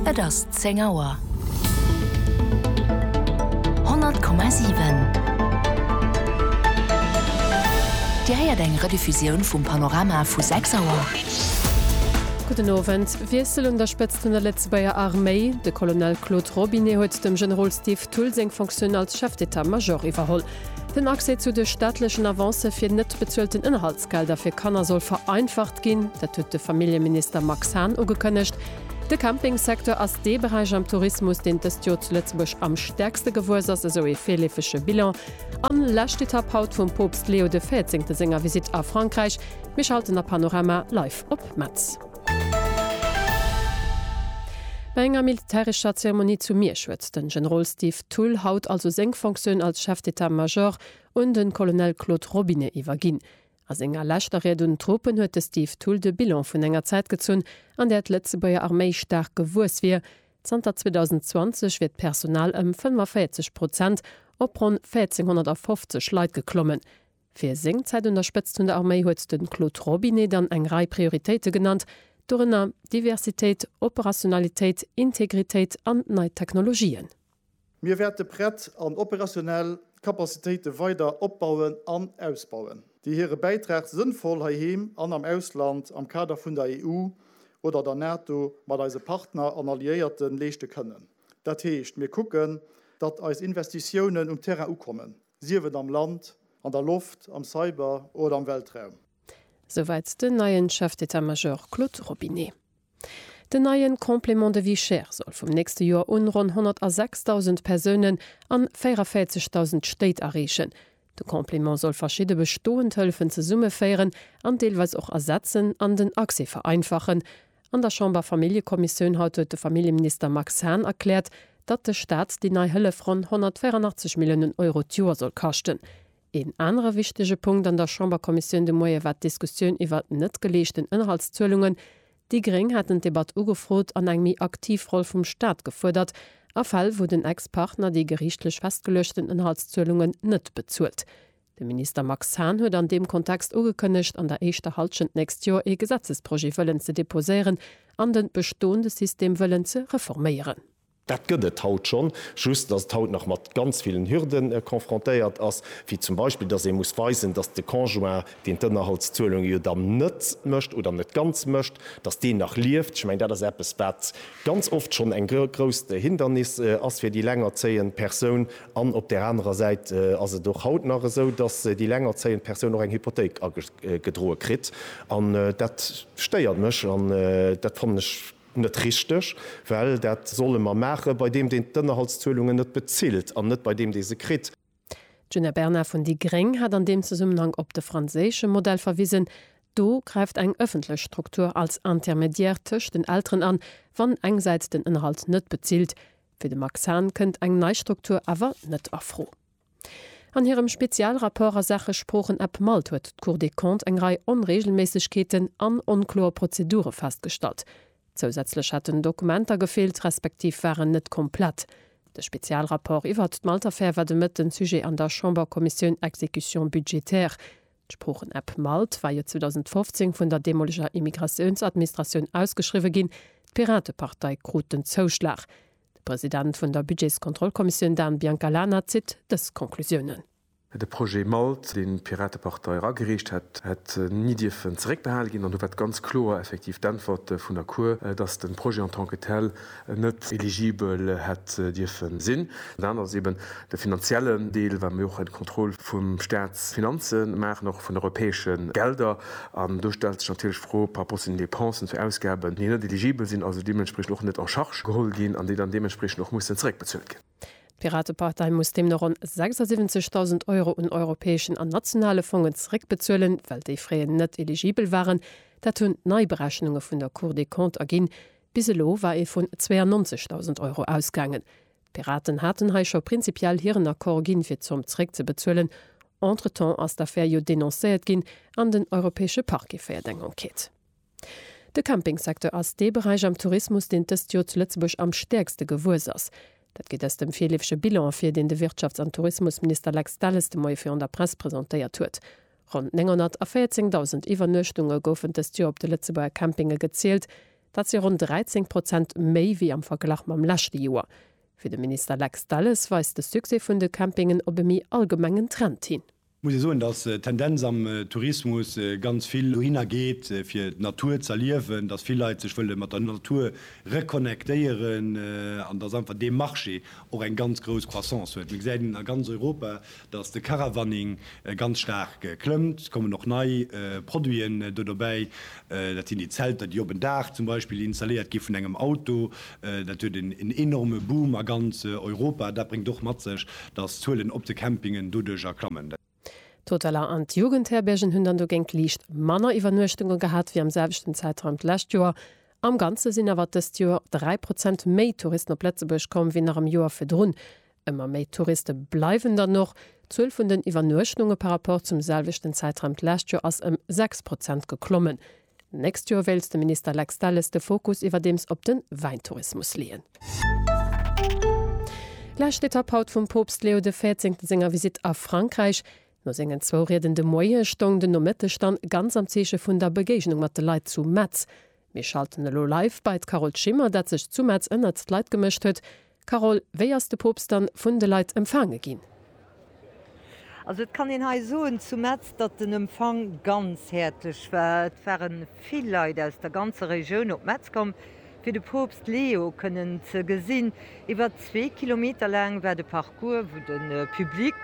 Et ass 10 Auer. 100,7 Dir héiert eng Rediffusioun vum Panorama vu 6 Auer. Gudden Owend. Wiessel un der Spëtzt vun der Lëtzebuerger Arméi, De Colonel Claude Robinet huet dem Generol Steve Thull seng Fonctioun als Chef d'état-major iwwerholl. Den Accès zu de staatlechen Avancë fir net bezuelten Ënnerhalt. D'Gelder fir Kanner soll vereinfacht ginn, dat huet de Familljeminister Max Hahn ugekënnegt. De Campingsecteur ass dee Beräich am Tourismus, deen dëst Joer zu Lëtzebuerg am stäerkste gewuess ass, esou ee virleefege Bilan. An lescht Etapp haut vum Poopst Leo de Véierzéngte senger Visitt a Frankräich. Mir schalten a Panorama Live op Metz. Bei enger militärescher Zeremonie zu Miersch huet den Generol Steve Thull haut also seng Fonctioun als Chef d'État-Major un de Colonel Claude Robinet iwwerginn. A senger leschter Ried un d'Truppen huet de Steve Thull de Bilan vun enger Zäit gezunn, an där d'Lëtzebuerger Arméi staark gewuess wier, Zanter 2020 wier d'Personal ëm 45 Prozent op ronn 1.450 Leit geklommen. Fir seng Zäit un der Spëtzt vun der Arméi huet de Claude Robinet dann eng Rei Prioritéite genannt, dorënner Diversitéit, Operationalitéit, Integritéit an nei Technologien. Mir wäerte prett an operationell Kapazitéite weider opbauen an ausbauen, déi hire Bäitrag sënnvoll heiheem an am Ausland am Kader vun der EU oder der NATO mat eise Partner an Alliéierte leeschte kënnen. Dat heescht, mir kucken, datt eis Investitiounen um Terrain ukommen, sief et am Land, an der Loft, am Cyber oder am Weltraum. Souwäit den neien Chef d'État-Major Claude Robinet. Den neien Complément de vie chère soll vum nächste Joer un ronn 106.000 Persounen an 44.000 Stéit erreechen. De Complément soll verschidde bestoend Hëllefen zesummeféieren an deelweis och ersetzen an den Accès vereinfachen. An der Chamber-Familljekommissioun haut huet de Familljeminister Max Hahn erkläert, datt de Staat déi nei Hëllef ronn 184 Milliounen Euro d'Joer soll kaschten. Een anere wichtege Punkt an der Chamberkommissioun de Moie war d'Diskussioun iwwert net geleeschten Ënnerhaltszuelungen. Déi Gréng haten d'Debatt ugefrot an eng méi aktiv Roll vum Staat gefuerdert a Fäll, wou den Ex-Partner déi geriichtlech festgeluechten Ënnerhaltszuelungen net bezuelt. De Minister Max Hahn huet an deem Kontext ugekënnegt, an der éischter Hallschent d'nächst Joer ee Gesetzesprojet wëllen ze deposéieren an de bestoende System wëllen ze reforméieren. Dat gëtt et haut schonn, just datt et haut nach mat ganz villen Hürde confrontéiert ass, wéi zum Beispill, datt ee muss weisen, datt de Conjoint, deen d'Ënnerhaltszuelunge jo dann net mécht oder net ganz mécht, datt deen nach lieft. Ech mengen, dat ass eppes, wat ganz oft schonn eng grousst Hindernis ass fir déi lengerzéiend Persoun. An op där anerer Säit ass et och haut nach esou, datt déi lengerzéiend Persoun och eng Hypothéik agedroe kritt. An dat stéiert mech an dat fannen ech Net richteg, well dat solle mer maache bei deem, deen d'Ënnerhaltszuelungen net bezilt, an net bei deem, dee se kritt. D'Djuna Bernard vun déi gréng hat an deem Zesummenhang op de franséische Modell verwisen. Do gräift eng ëffentlech Struktur als Intermédiaire tëscht den Elteren an, wann engsäits den Ënnerhalt net bezilt. Fir de Max Hahn kënnt eng nei Struktur awer net a Fro. An hirem Spezialrapport a Saache Sproochen-App malt huet d'Cour des Comptes eng Rei Onreegelméissegkeeten an onkloer Prozedure festgestallt. Zousätzlech hätten Dokumenter gefeelt respektiv waren net komplett. De Spezialrapport iwwert d'Malt-Affär war de Mëtten Sujet an der Chamberkommissioun Exécution budgétaire. D'Sproochen-App malt war jo 2015 vun der deemoleger Immigratiounsadministratioun ausgeschriwwe ginn. D'Piratepartei krut den Zouschlag. De President vun der Budgetskontrollkommissioun Dan Biancalana zitt dës Konklusiounen. De Projet MALT, deen d'Piratepartei eragereecht hätt, hätt ni dierfen zeréckbehale ginn. An do war d'ganz kloer effektiv d'Äntwert vun der Cour, datt de Projet en tant que tel net eligibel hätt dierfe sinn. Dat ass eeben De finanziellen Deel, well mir och eng Kontroll vu Staatsfinanze maachen, och vun europäesche Gelder. An do stellt sech natierlech d'Fro par rapport zu den Dépensen, zu Ausgaben, déi net eligibel sinn, also deementspriechend och net en charge geholl ginn an déi dann deementspriechend och mussen zeréckbezuelt ginn. D'Piratepartei muss deemno ronn 76.000 Euro un europäeschen an nationale Fongen zeréckbezuelen, well déi fréier net eligibel waren. Dat hunn d'Neiberechnunge vun der Cour des Comptes erginn. Bis elo war ee vun 92.000 Euro ausgaangen. D'Piraten haten hei scho prinzipiell hiren Accord ginn, fir d'Zomm zeréckzebezuelen. Entretemps ass d'Affär jo denoncéiert ginn an den Europäesche Parquet féiert eng Enquête. De Campingsecteur ass dee Beräich am Tourismus, deen d'ëst Jor zu Lëtzebuerg am stäerkste gewuess ass. Dat geet aus dem virleefege Bilan ervir, deen de Wirtschafts an Tourismusminister Lex Delles de Moie virun der Press presentéiert huet. Ronn 914.000 Iwwernuechtunge goufen d'ëst Jor op de Lëtzebuerger Campinge gezielt, Dat si ronn 13 Prozent méi wéi am Verglach mam leschte Joer. Fir de Minister Lex Delles weist de Succès vun de Campingen op e méi allgemengen Trend hin. Muss ee soen, datt d'Tendenz am Tourismus ganz vill dohinner geet, fir d'Natur z'erliewen, datt vill Leit sech wëlle mat der Natur reconnectéieren an datt einfach dee Marché och eng ganz grouss Croissance huet. Mir gesäit een a ganz Europa, dass de Caravaning ganz staark klëmmt, kommen och nei Produiten do dobäi, dat sinn déi Zelter, déi op en Daach zum Beispill installéiert gi vun engem Auto. Dat huet en enorme Boom a ganz Europa. Dat bréngt och mat sech, dass d'Zuelen op de Campingen doduerjer klammen. D'Hoteller an d'Jugendherbergen hunn dann dogéint liicht manner Iwwernuechtunge gehat wéi am selwechten Zäitraum d'lescht Joer. Am Ganze sinn awer dëst Joer 3 Prozent méi Touristen op Lëtzebuerg komm wéi nach am Joer virdrun. Ëmmer méi Touriste bleiwen dann och. D'Zuel vun den Iwwernuechtnunge par Rapport zum selwechten Zäitraum d'lescht Joer ass ëm 6 Prozent geklommen. D'nächst Joer wéilt de Minister Lex Delles de Fokus iwwerdeems op de Wäintourismus leeën. Lescht Etapp haut vum Poopst Leo de Véierzéngten senger Visitt a Frankräich. No sengen zwou Rieden de Moie stoung den Nomëtteg dann ganz am Zeeche vun der Begéignung mat de Leit zu Metz. Mir schalten elo live bei d'Carole Schimmer, dat sech zu Metz ënnert d'Leit gemëscht huet. Carole, wéi ass de Poopst dann vun de Leit empfaange ginn? Also et kann een hei soen zu Metz, datt den Empfang ganz häerzlech war. Et ware vill Leit aus der ganzer Regioun op Metz komm, fir de Poopst Leo kënnen ze gesinn. Iwwer zwee Kilometer laang war de Parcours, wou de Public,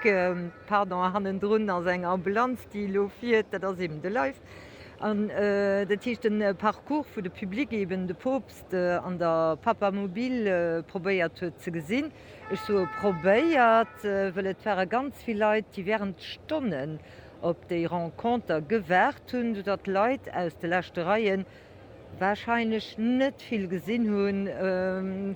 pardon, hannendrun ass eng Ambulanz, déi elo fiert, dat ass eben de Live. An dat heescht de Parcours vu de Public eben de Poopst an der Papamobil probéiert huet ze gesinn. Ech soe probéiert, wëll et ware ganz vill Leit, déi während Stonnen op déi Renconter gewaart hunn, soudatt Leit aus de leschte Reie warscheinlech net vill gesinn hunn,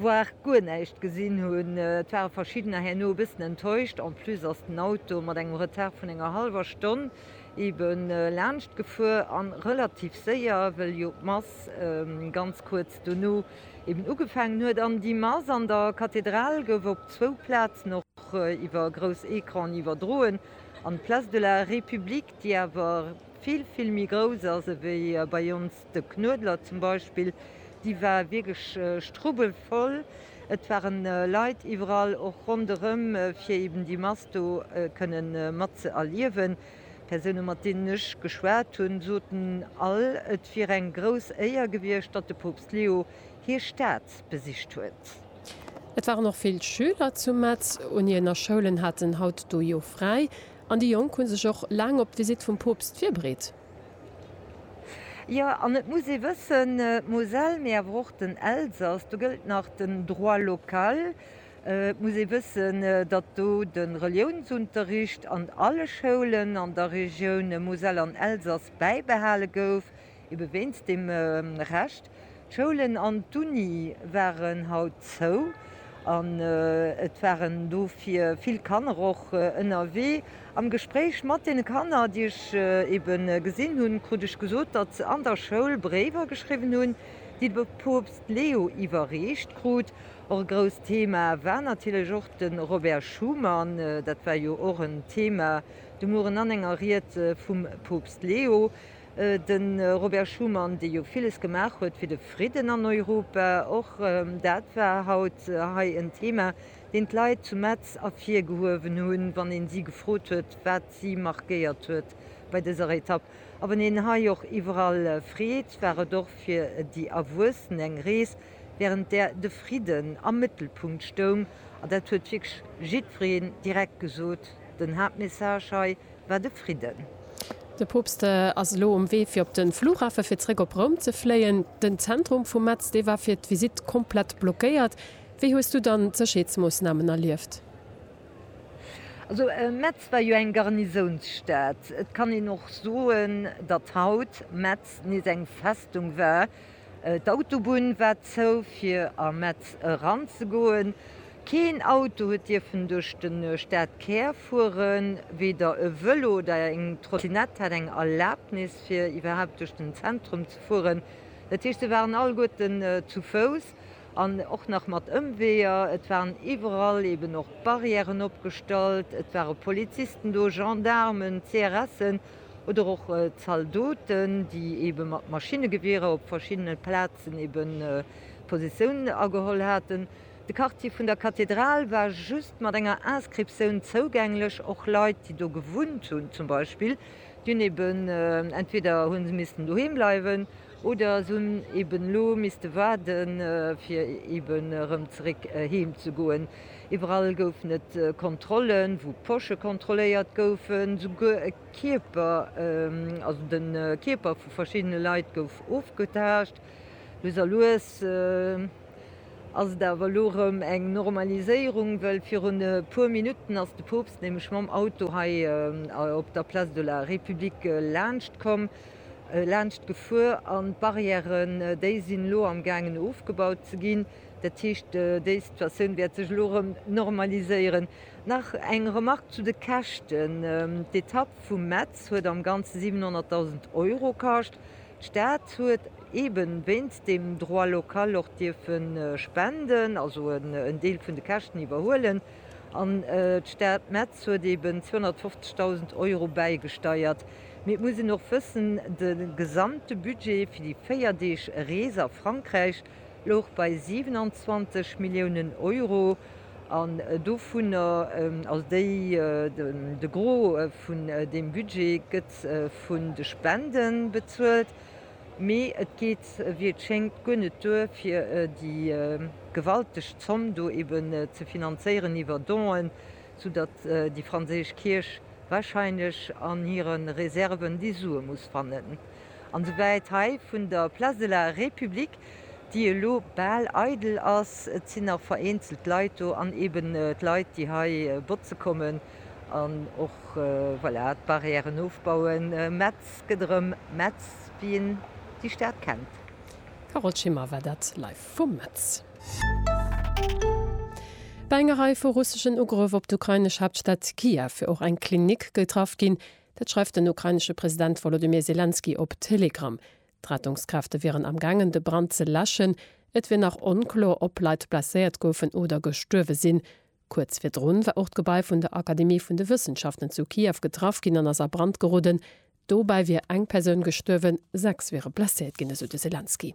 voire guer näischt gesinn hunn. Et ware verschiddener herno e bëssen enttäuscht. En plus ass den Auto mat engem Retard vun enger hallwer Stonn eben laanscht gefuer an relativ séier, wëll jo d'Mass ganz kuerz dono eben ugefaangen huet. An déi Mass an der Kathedral gouf op zwou Plazen och iwwer grouss Ecranen iwwerdroen, an d'Place de la République, déi awer vill, vill méi grouss ass ewéi bei ons, De Knuedler zum Beispill, dee war wierklech strubbelvoll. Et ware Leit iwwerall och ronderëm, fir eben déi Mass do kënne mat ze erliewen. D'Persoune mat deenen ech geschwat hunn, soten all, et wier eng grouss Éier gewiescht, datt de Poopst Leo hir Stad besicht huet. Et waren och vill Schüler zu Metz. Uniener Schoulen haten haut do jo fräi an déi Jonk hu sech och laang op d'Visitt vum Poopst virbereet. Jo, an et muss ee wëssen, d'Moselle, mee awer och den Elsass, do gëllt nach den Droit local. Et muss ee wëssen, datt do de Reliounsunterricht an alle Schoulen an der Regioun Moselle an Elsass bäibehale gouf, ebe wéinst deem Recht. D'Schoulen an d'Uni waren haut zou an et waren dofir vill Kanner och ënnerwee. Am Gespréich mat deene Kanner, déi ech ebe gesinn hunn, krut ech gesot, datt se an der Schoul Bréiwer geschriwwen hunn, déi de Poopst Leo iwwerreecht krut. Och e grousst Thema war natierlech och de Robert Schuman. Dat war jo och en Thema de Mueren an enger Ried vum Poopst Leo. De Robert Schuman, dee jo villes gemaach huet fir de Fridden an Europa, och dat war haut hei en Thema, deen d'Leit zu Metz ervirgehuewen hunn, wann ee si gefrot huet, wat si markéiert huet bei dëser Etapp. A wann een hei och iwwerall freet, war et och fir déi Erwuessen eng Rees, wärend där de Fridden am Mëttelpunkt stoung. An dat huet wierklech jiddwereen direkt gesot, den Haaptmessage hei, war de Fridden. De Poopst ass elo um Wee fir op de Flughafe fir zréck op Roum ze fléien. Den Zentrum vu Metz, dee war fir d'Visitt komplett blockéiert. Wéi hues du dann d'Sécherheetsmoossnamen erlieft? Also Metz war jo eng Garnisounsstad. Et kann een och soen, datt haut Metz nees eng Festung war, D'Autobunn war zou fir a Metz eran ze goen. Keen Auto huet dierfen duerch de Stadkär fueren. Weder e Vëlo oder eng Trottinett hat eng Erlabnis fir iwwerhaapt duerch den Zentrum ze fueren. Dat heescht, se waren alleguerten zu Fouss an och nach mat Ëmweeër. Et waren iwwerall eben och Barrièren opgestallt, et ware Polizisten do, Gendaarmen, CRSen. oder och Zaldoten, déi ebe mat Maschinnegewierer op verschiddene Plazen ebe Positioun ageholl haten. De Quartier vun der Kathedral war just mat enger Inscriptioun zougänglech. Och Leit, déi do gewunnt hunn zum Beispill, déi hunn ebe entweder hu se missten doheem bleiwen oder se hunn eben elo misste waarden, fir eben erëm zeréck heem ze goen. Iwwerall goufen et Kontrollen, wou d'Posche kontrolléiert goufen, souguer e Kierper, also de Kierper vu verschiddene Leit gouf ofgetaascht. Lues a lues ass et awer elo erëm eng Normaliséierung, well virun e puer Minutten ass de Poopst nämlech mam Auto hei op der Place de la République laanscht komm, laanscht gefuer an d'Barrièren déi sinn elo am gaangen ofgebaut ze ginn. Dat heescht, déi Situatioun wäert sech elo erëm normaliséieren. Nach eng Remark zu de Käschten, D'Etapp vu Metz huet am Ganze 700.000 Euro kascht. D'Stad huet eeben wéinst dem Droit local och dierfe spenden, also en Deel vun de Käschten iwwerhuelen an d'Stad Metz huet eeben 250.000 Euro bäigesteiert. Mee et muss een och wëssen, de gesamte Budget fir déi véier Deeg Rees a Frankräich louch bei 27 Milliounen Euro an dovunner, also déi, de Gros vun deem Budget gëtt vun de Spende bezuelt, mee et geet, wéi et schéngt, guer net duer, fir déi gewalteg Zomm do eeben ze finanzéieren iwwer Donen, sou datt déi franséisch Kierch warscheinlech an hire Reserven déi Sue muss fannen. An souwäit hei vun der Place de la République, déi elo bal eidel ass, et sinn nach vereenzelt Leit do an eben d'Leit, déi hei botze kommen an och, voilà, d'Barrièren ofbauen. Metz gëtt erëm Metz, wéi een déi Stad kennt. Carole Schimmer war dat live vu Metz. Bei enger Rei vu russeschen Ugrëff op d'ukrainesch Haaptstad Kiew och eng Klinik getraff ginn. Dat schreift den ukrainesche President Wolodymyr Selenskyj op Telegram. D'Rettungskräfte wieren am gaangen de Brand ze läschen. Et wier nach onkloer ob Leit blesséiert goufen oder gestuerwe sinn. Kuerz virdrun war och d'Gebai vun der Akademie vun de Wëssenschaften zu Kiew getraff ginn an ass a Brand geroden. Dobäi wier eng Persoun gestuerwen, sechs wiere blesséiert ginn, esou de Selenskyj.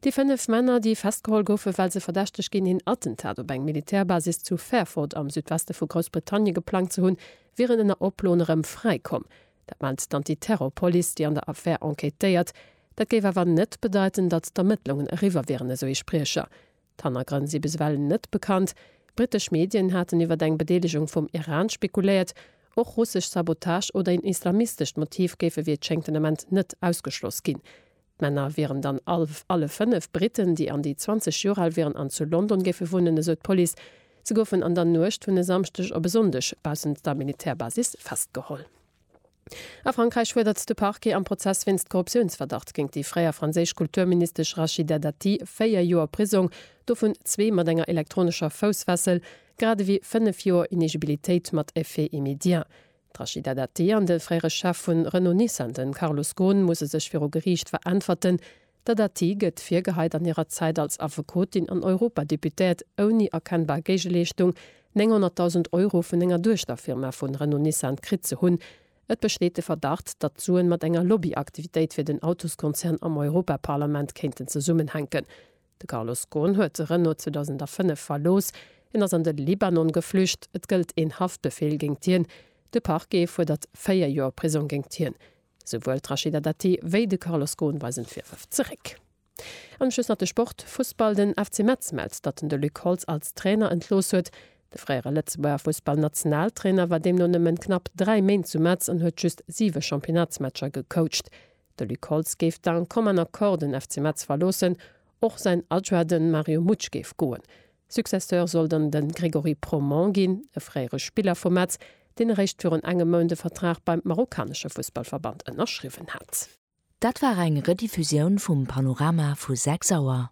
Déi fënnef Männer, déi festgeholl goufen, well se verdächteg ginn, een Attentat op eng Militärbasis zu Fairford am Südweste vu Groussbritannien geplangt ze hunn, wieren ënner Oploen erëm fräi komm. Dat mellt d'Antiterrorpolice, déi an der Affär enquêtéiert. Dat géif awer net bedeiten, datt d'Ermëttlungen eriwwer wieren, esou ee Spriecher. D'Hannergrënn si bis ewell net bekannt. Brittesch Medien haten iwwer eng Bedeelegung vum Iran spekuléiert. Och russesch Sabotage oder een islamistescht Motiv géife wéi et schéngt den Ament net ausgeschloss ginn. D'Männer wieren dann all alle fënnef Britten, déi an déi 20 Joer al wieren an zu London géife wunnen, esou d'Police. Se goufen an der Nuecht vun e Samschdeg op e Sonndeg baussent der Militärbasis festgeholl. A Frankräich fuerdert de Parquet am Prozess wéinst Korruptiounsverdacht géint déi fréier franséisch Kulturministesch Rachida Dati véier Joer Prisong, dovun zwee mat enger elektronescher Foussfessel, grad ewéi fënnef Joer Inegibilitéit mat Effet immédiat. D'Rachida Dati an de fréiere Chef vun Renault-Nissan, de Carlos Ghosn, musse sech viru Geriicht veräntwerten. D'Dati gëtt virgeheit an hirer Zäit als Affekotin an Europadeputéiert ouni erkennbar Géigeleeschtung 900.000 Euro vun enger Duechterfirma vu Renault-Nissan kritt ze hunn. Et besteet de Verdacht, datt d'Suen mat enger Lobbyaktivitéit fir den Autoskonzern am Europaparlament kéinten zesummenhänken. De Carlos Ghosn huet de Renault 2005 verlooss. Hien ass an de Libanon geflücht. Et gëllt een Haftbefeel géingt hien. De Parquet fuerdert véier Joer Prisong géingt hien. Souwuel d'Rachida Dati wéi de Carlos Ghosn weisen d'Virwërf zeréck. An um Schluss nach de Sport, Fussball, Den FC Metz mellt, datt en de Luc Holtz als Trainer entlooss huet. De fréiere Lëtzebuerger Fussballnationaltrainer war deemno nëmmen knapp dräi Méint zu Metz an huet just siwe Championnatsmatcher gecoacht. De Luc Holtz géif d'un commun accord den FC Metz verloossen, och säin Adjoint den Mario Mutsch géif goen. Successeur soll dann den Grégory Proman ginn, e fréiere Spiller vu Metz, deen eréischt virun engem Mount e Vertrag beim marokkanesche Fussballverband ënnerschriwwen hat. Dat war eng Rediffusioun vum Panorama vu 6 Auer.